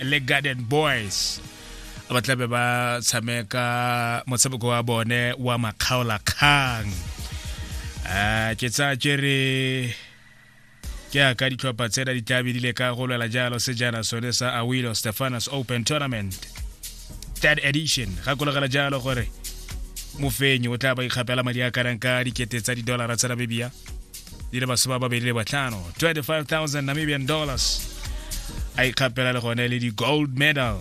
le garden boys ba tlabe ba tshameka motshameko wa bone wa makgaola kgang um ke tsa kere ke a ka ditlhopha tsena di tlabe di le ka go lwela jalo sejana sone sa awilo stefanos open tournament third edition gakologela jalo gore mofenyi o tla ba ikgapela madi a kanang ka dikete tsa didolara tsa namibia di le masome a mabedi le botlhano 25000 namibian dollars a ikgapela le gone le di-gold medal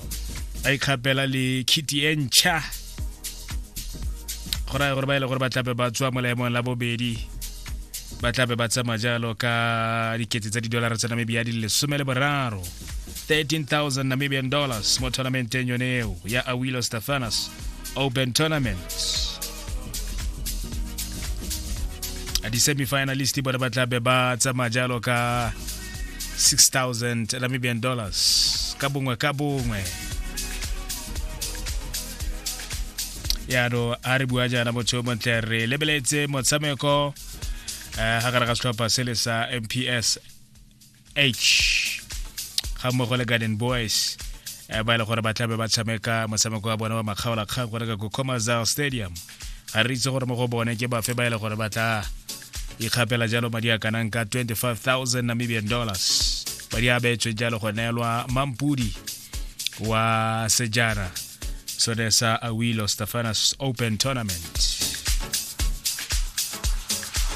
a ikgapela le kitty e ntšha go raya gore ba e le gore ba tlape ba tswa mo laemong la bobedi ba tlape ba tsama jalo ka dikete tsa didolara tsa namibia di lesome le boraro 13000 namibian dollars mo tournamenteng yone eo ya awilo stefanas open tournament di-semifinalist bone ba tla be ba tsamaya jalo ka 6000 namibian dollars ka bongwe ka bongwe yano a re bua jaana motho yo montle re lebeletse motshameko um ga gare ga setlhopha se le sa mps h ga mmogo le garden boys eh, ba e le gore ba tlabe ba tshameka motshameko wa bone wa makgaolakgang go reka ko comazal stadium ga re itse gore mo go bone ke bafe ba e le gore ba tla ikgapela jalo madi a kanang ka 25000 namibian dollars madi a beetswe jalo go neelwa mampudi wa sejana so there's uh, a Awilo Stefanus Open Tournament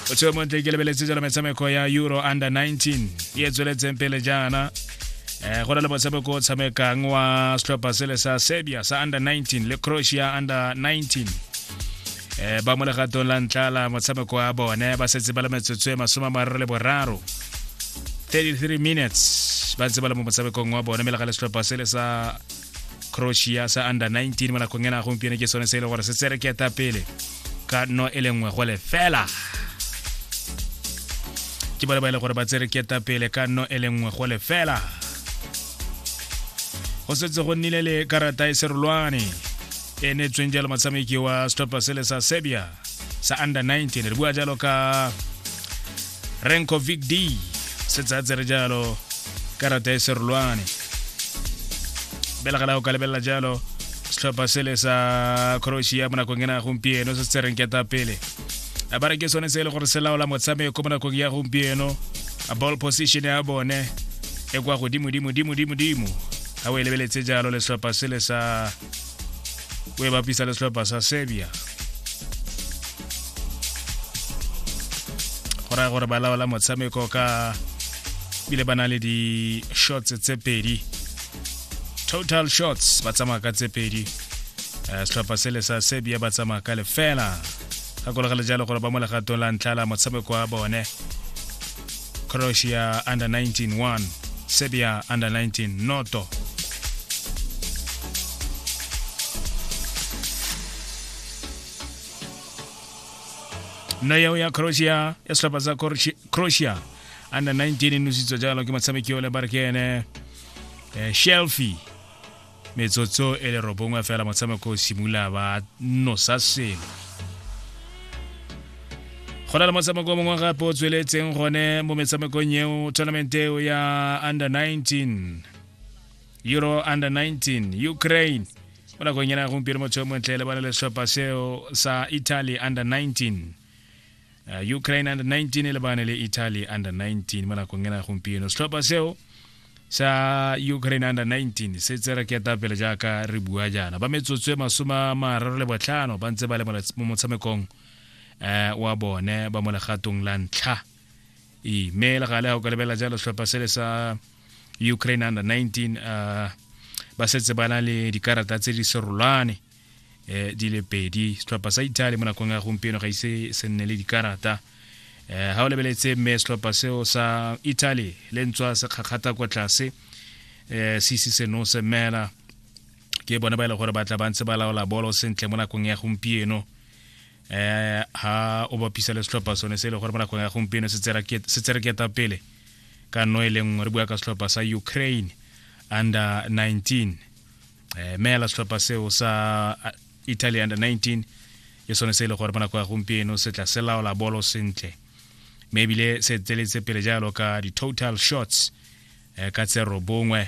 o tswe montle ke lebeletse jalo metshameko ya euro under 19 e e tsweletseng pele jaana eh go na le motshameko o tshamekang wa setlhopha sele sa serbia sa under 19 le croatia under 19 eh ba mo legatong la ntlha la motshameko wa bone ba setse ba le metsotso e masome a mararo le boraro 33 minutes ba ntse ba le mo motshamekong wa bone mme le ga le setlhopha sele sa croatia sa under 19 mo nakong ena gompieno ke sone se e le gore se tsere ke eta pele ka no e le nngwe go le fela ke bone ba e le gore ba tsere ke eta pele ka no e le nngwe go le fela go setse go nnile le karata e serolwane e neetsweng jalo motshameki wa stopper sele sa serbia sa under 19 re bua jalo ka renko vic d setsatse re jalo karata e serolwane belegela go ka lebelela jalo setlhopha sele sa croatia mo nakong ena ya gompieno se se reng keta pele a ba re ke sone se e le gore se laola motshameko mo nakong ya gompieno a ball position ya bone e kwa godimodimodimodimodimo ga o e lebeletse jalo le setlhopha sele sa o e bapisa le setlhopha sa serbia go raya gore ba laola motshameko ka bile ba na le di-shots tse pedi total shots ba tsamaya ka tse pedi eh, setlhopha sele sa serbia ba tsamaya ka lefela gakologele jalo gore ba mo legatong la ntlha la motshameko wa bone croatia under 19 1 serbia under 19 noto nna yao ya croatia ya setlhopha sa Croatia- croatia under 19 e nositswa jalo ke motshameki o le barekene eh, shelfie metsotso e le robongwe fela motshameko o simolola ba nosa selo go na le motshameko mongwe gape o tsweletseng gone mo metshamekong eo tournament eo ya under 19 euro under 19 ukraine mo nakong yana gompieno motho yo montle le bana le setlhopha seo sa italy under 19 Uh, Ukraine under 19 e lebane le Italy under 19 mo nakong ena gompieno setlhopha seo sa Ukraine under 19 se tsere ke tapele jaaka re bua jaana ba metsotso e masoma mararo le botlhano ba ntse ba le mo motshamekong eh wa bone ba mo legatong la ntlha e me le gale go ka lebela jalo setlhopha se le sa Ukraine under 19 uh, ba setse ba na le dikarata tse di serolwane eh, di le pedi setlhopha sa italy mo nakong ya gompieno ga ise se nne le dikarata eh, ga o lebeletse mme setlhopha seo sa italy le ntswa se kgakgata kwa tlase eh, se ise se no se mela ke bone ba e le gore ba tla ba ntse ba laola bolo sentle mo nakong ya gompieno eh ha o bapisa le setlhopha sone se e le gore mo nakong ya gompieno se tsereketa pele ka nno e le nngwe re bua ka setlhopha sa ukraine under 19 eh, meela setlhopha seo sa uh, italy under 19 ke sone se e le gore mo nako ya gompieno se tla se laola bolo sentle mme ebile se tseletse pele jalo ka di-total shots eh, ka tse robongwe